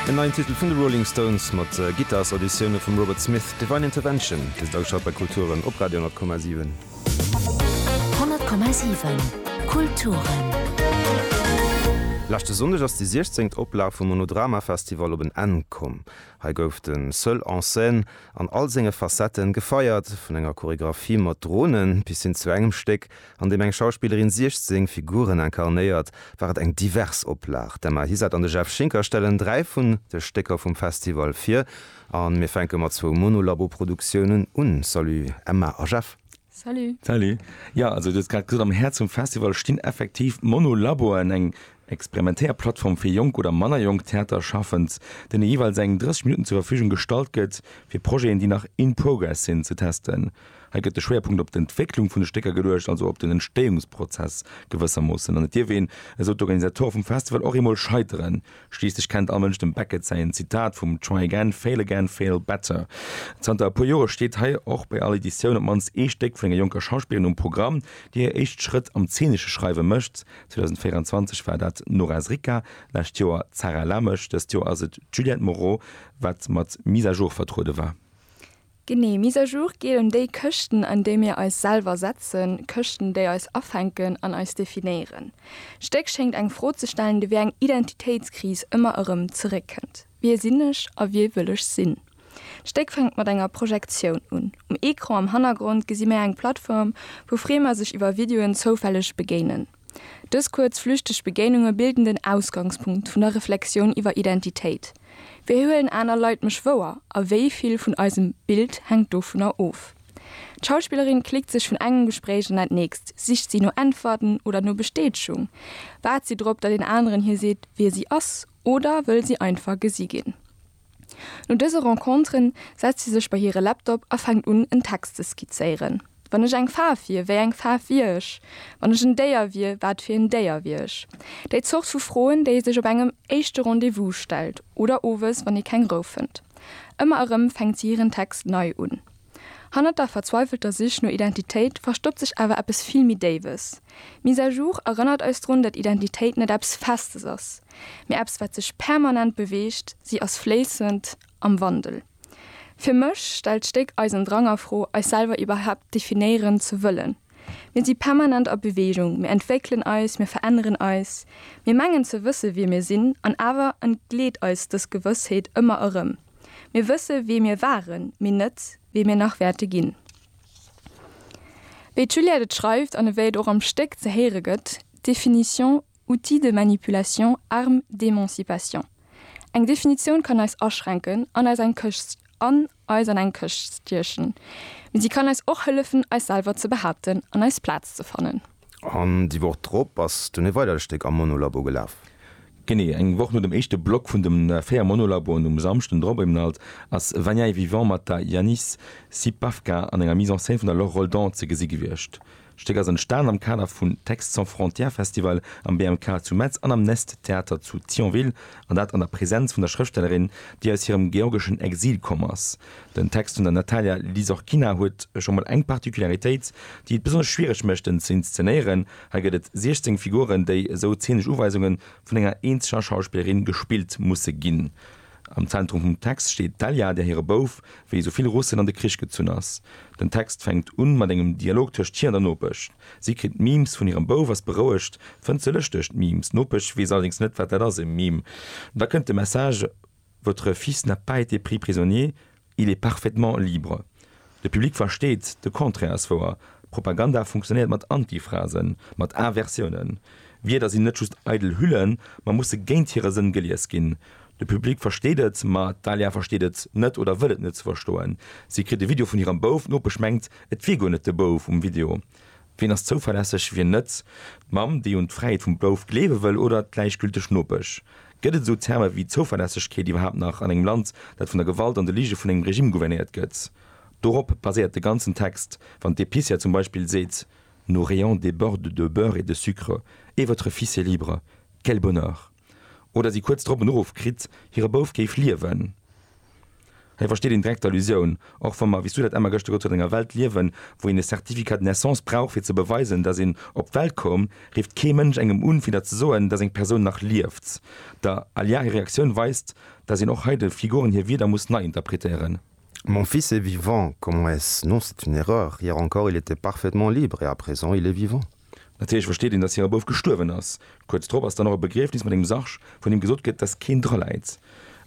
Den neien Titel vun de Rolling Stones mat Gittars-Auditioune vum Robert Smith, Divine Intervention, dëst ausschalt bei Kulturen op Radio 10,7. 10,7 Kulturen. Leschte Sonndeg ass déi 16. Oplag vum Monodrama Festival op en Enn komm. Hei gouf de Seul en scène an all senge Facetten gefeiert, vun enger Choregraphie mat Dronen bis hin zu engem Stéck, an deem eng Schauspillerin 16 Figuren incarnéiert, war et eng divers Oplag. D'Emma Hisard an de Jeff Schinker stellen dräi vun de Stécker vum Festival vir a mir fänke mat zwou Monolabo-Produktiounen un. Salut Emma a Jeff. Salut. Salut. Jo, also du hues grad gesot, am Häerz vum Festival stinn effektiv Monolaboen, eng Experimentéierplattform fir jonk oder manner jonk Theaterschaffend, deene jeeweils eng 30 Minutten zur Verfügung gestallt gëtt, fir Projeten, déi nach in progress sinn, ze testen. Hei gëtt de Schwéierpunkt op d'Entwécklung vun de Stécker geluecht, also op den Entstéiungsprozess gewëssermoossen. An et dierf een, esou d'Organisatore vum Festival, och eemol scheiteren. Schliisslech kennt all Mënsch dem Beckett säin Zitat vum Try again, fail again, fail better. Zanter e puer Jore steet hei och bei all Editioun op d'mannst ee Stéck vun enger jonker Schauspillerin um Programm, déi hir éischt Schrëtt am zeenesche Schreiwe mécht. 2024 war dat d'Nora Sricka, d'lescht Joer d'Sarah Lamesch, dëst Joer ass et d'Juliette Moreau, wat mat Mise à jour vertruede war. Genee, Mise à jour geet ëm déi Këschten, an déi mir eis selwer setzen, Këschten, déi eis afänken an eis definéieren. D'Stéck schéngt eng Fro ze stellen, déi wéi eng Identitéitskris ëmmer erëm zeréckkënnt, Wie sinn ech a wie wëll ech sinn? D'Stéck fänkt mat enger Projektioun un. Um Ecran am Hannergrond gesi mir eng Plattform, wou Framer sech iwwer Videoen zoufälleg begéinen. Dës kuerz flüchteg Begéinunge bilden den Ausgangspunkt vun der Reflexioun iwwer Identitéit, Wéi huelen aner Leit mech wouer a wéi vill vun eisem Bild hänkt dovunner of? D'Schauspillerin klickt sech vun engem Gespréich an dat nächst, sicht si no Äntwerten oder no Bestätegung? Waart si drop, datt een aneren hir seet, wie si ass oder wëll si einfach gesi ginn? No dëse Renconteren setzt si sech bei hire Laptop a fänkt un, en Text ze skizzéieren, Wann ech eng Faarf wier, wéi eng Faarf wier ech? Wann ech en Déier wier, wat fir en Déier wier ech? Déi Zort vu Froen, déi ee sech op engem éischte Rendez-vous stellt oder owes, wann ee keng Rou fënnt. Ëmmer erëm fänkt si hiren Text nei un. Hannert der verzweifelter Sich no Identitéit verstoppt sech awer eppes vill méi Déiwes. Mise à jour erënnert eis drun, datt Identitéit net eppes Festes ass, mee eppes wat sech permanent beweegt, si ass fléissend, am Wandel. Fir mech stellt d'Stéck eisen Drang a Fro, eis selwer iwwerhaapt definéieren ze wëllen. Mir si permanent a Beweegung, mir entwéckelen eis, mir veränneren eis, mir mengen ze wësse wie mir sinn, an awer entgleet eis dës Gewëssheet ëmmer erëm. Mir wësse wee mir waren, mee net, wee mir nach wäerte ginn. Wéi d'Juliette et schreift an ewéi et och am Stéck ze héiere gëtt, Définition, Outil de manipulation, arme d'émancipation. Eng Definitioun kann eis aschränken an eis an eng Këscht stiechen, mee si kann eis och hëllefen, eis selwer ze behaapten an eis Plaz ze fannen. An déi Woch drop ass dunn e weidert Stéck am Monolabo gelaf. Genee eng Woch no dem éischte Block vun de 4 Monolaboen um Samschden drop um Nalt ass Vaniaï Vivant mat der Yanis Sipavka an enger Mise en scène vun der Laure Roldan ze gesi gewiescht. D'Stéck ass entstanen am Kader vun Textes sans frontières Festival am BMK zu Metz an am Nest Theater zu Thionville an dat an der Presenz vun der Schrëftstellerin, déi aus hirem georgeschen Exil komm ass. Den Text vun der Natalia Lizorkina huet scho mol eng Particularitéit, déi et besonnesch schwiereg mécht, en ze inszenéieren, Hei gëtt et 16 Figuren, déi, esou zeeneg Uweisunge vun enger eenzeger Schauspillerin, gespillt musse ginn. Am Zentrum vum Text steet d'Elya, där hire Bouf, wéi esou vill Russen, an de Krich gezunn ass. Den Text fänkt un mat engem Dialog tëscht hir an der Nopesch. Si kritt Memes vun hirem Bouf, ass berouegt, fënnt se lëschteg, d'Memes. D'Nopesch weess allerdéngs net, wat dat ass, e Meme. Da kënnt de Message. Votre fils n'a pas été pris prisonnier, il est parfaitement libre. De Public versteet, de Contraire ass wouer. Propaganda funktionéiert mat Antiphrasen, mat Aversiounen. Wierder sinn net just eidel Hüllen, ma musse géint hire Sënn gelies ginn. De Public versteet et, ma d'Dalia versteet et net oder wëll et net ze verstoen. Si kritt e Video vun hirem Bouf, d'Nopesch mengt, et wier guer net de Bouf um Video. Wien ass zouverlässeg, wien net? D'Mamm, déi un d'Fräiheet vum Bouf gleewe wëll, oder d'gläichgülteg Nopesch? Gëtt et esou Terme wéi Zouverlässegkeet iwwerhaapt nach an engem Land, dat vun der Gewalt an de Lige vun engem Regime gouvernéiert gëtt? Dorop baséiert de ganzen Text, wann d'Epicière zum Beispill seet, Nos rayons débordent de beurre et de sucre, et votre fils est libre! Quel bonheur! oder si kuerz drop en Uruff kritt, hire Bouf géif liewen. Hei versteet een direkt d'Allusioun, och wa mer, wéi s du dat Emma gëschter gesot huet, an enger Welt liewen, wou een e Certificat de naissance brauch, fir ze beweisen, dass een op d'Welt koum, rifft kee Mënsch engem un, fir der ze soen, dass eng Persoun nach lieft. Der Alya hir Reaktioun weist, dass een och hei de Figuren hir Wierder muss nei interpretéieren. Mon fils est vivant, comment est-ce? Non, c'est une erreur. Hier encore, il était parfaitement libre et à présent, il est vivant. Natierlech versteet een, dass hire Bouf gestuerwen ass. Kuerz drop ass dann och e Begriefnis mat engem Sarg, vun deem gesot gëtt, dass keen dra läit.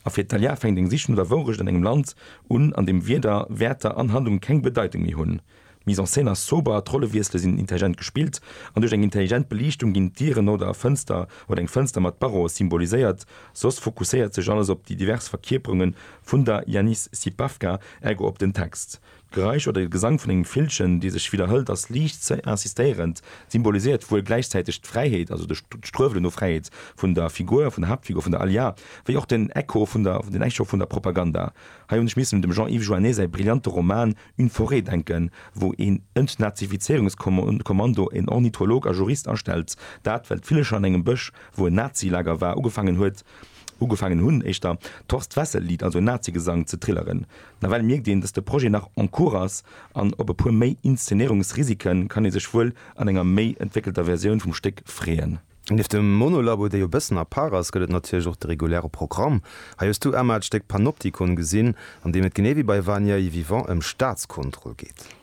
A fir d'Talia fänkt eng Sich no der Wourecht an engem Land un, an deem Wierder, Wäerter an Handlungen keng Bedeitung méi hunn. D'Mise en scène ass sober, d'Rollewiessele sinn intelligent gespillt an duerch eng intelligent Beliichtung ginn d'Dieren oder e Fënster oder eng Fënster mat Barreaux symboliséiert. Soss fokusséiert sech alles op déi divers Verkierperunge vun der Yanis Sipavka, ergo op den Text. D'Geräisch oder de Gesang vun engem Villchen, dee sech widderhëlt, ass liicht ze insistéierend. Et symboliséiert wuel gläichzäiteg d'Fräiheet, also de Struewelen no Fräiheet, vun der Figur, vun der Haaptfigur, vun der Alya, wéi och den Echo vun der, den Echo vun der Propaganda. Hei hunn ech missen dem Jean-Yves Joannet säi brillante Roman Une forêt denken, wou een Entnazifizéierungskommando, een Ornitholog a Jurist astellt, dat, well d'Villecher an engem Bësch, wou en Nazi-Lager war, ugefaangen huet, ugefaangen hunn, éischter d'Horst-Wessel-Lied, also en Nazi-Gesang, ze trilleren. Nawell mierkt een, dass de Projet nach en cours ass an op e puer méi Inszenéierungsrisiken kann ee sech wuel an enger méi entwéckelter Versioun vum Stéck freeën. Nieft dem Monolabo, dee jo e bëssen à part ass, gëtt et natierlech och de reguläre Programm. Hei hues du, Emma, d'Stéck Panopticon gesinn, an deem et genee wéi bei Vanier est vivant ëm Staatskontroll geet.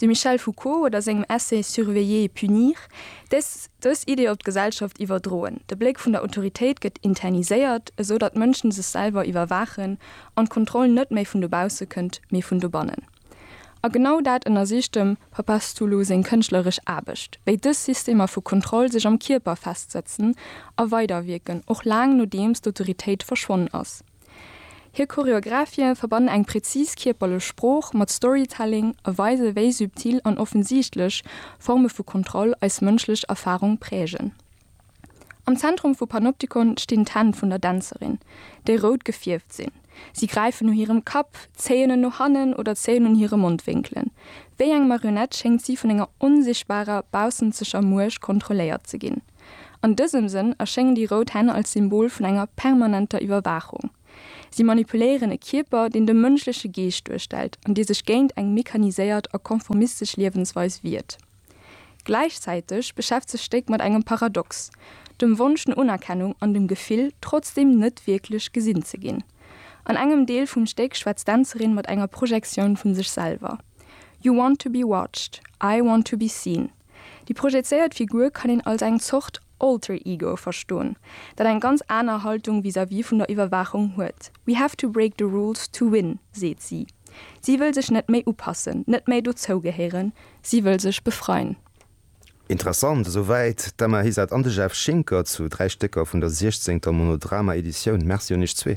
Dem Michel Foucault oder sengem Essay Surveiller et punir dës dës Idee op d'Gesellschaft iwwerdroen. De Bléck vun der Autoritéit gëtt interniséiert, esou datt d'Mënschen sech selwer iwwerwaachen an d'Kontroll net méi vun dobausse kënnt, mee vun dobannen. A genau dat ënnersicht dem Papastoulou seng kënschtleresch Aarbecht, wéi dës Systemer vu Kontroll sech am Kierper festsëtzen a weiderwierken, och laang nodeems d'Autoritéit verschwonnen ass. Hir Choreographie verbannen eng präzis kierperlech Sprooch mat Storytelling a weise wéi subtil an offensichtlech Forme vu Kontroll eis mënschlech Erfarung prägen. Am Zentrum vu Panoptikon stinn d'Hänn vun der Dänzerin, déi rout gefierft sinn. Si gräifen no hirem Kapp, zéien en no hannen oder zéien un hire Mondwénkelen. Wéi eng Marionett schéngt si vun enger onsichtbarer, baussenzeger Muecht kontrolléiert ze ginn. An dësem Sënn erschéngen déi rout Hänn als Symbol vun enger permanenter Iwwerwaachung. Si manipuléieren e Kierper, deen de mënschleche Geescht duerstellt an dee sech géint eng mechaniséiert a konformistesch Liewensweis wiert. Gläichzäiteg beschäftzt sech d'Stéck mat engem Paradox, dem Wonsch no Unerkennung an dem Gefill, trotzdeem net wierklech gesinn ze ginn. An engem Deel vum Stéck schwätzt d'Dänzerin mat enger Projektioun vu sech selwer, You want to be watched, I want to be seen. Déi projezéiert Figur kann een als eng Zort Alter Ego verstoen, dat eng ganz aner Haltung vis-à-vis vun der Iwwerwaachung huet. We have to break the rules to win, seet si. Si wëll sech net méi upassen, net méi dozougehéieren, si wëll sech befreien. Interessant, esou wäit d'Emma Hysert an de Jeff Schinker zu dräi Stécker vun der 16. Monodrama Editioun. Merci un iech zwee.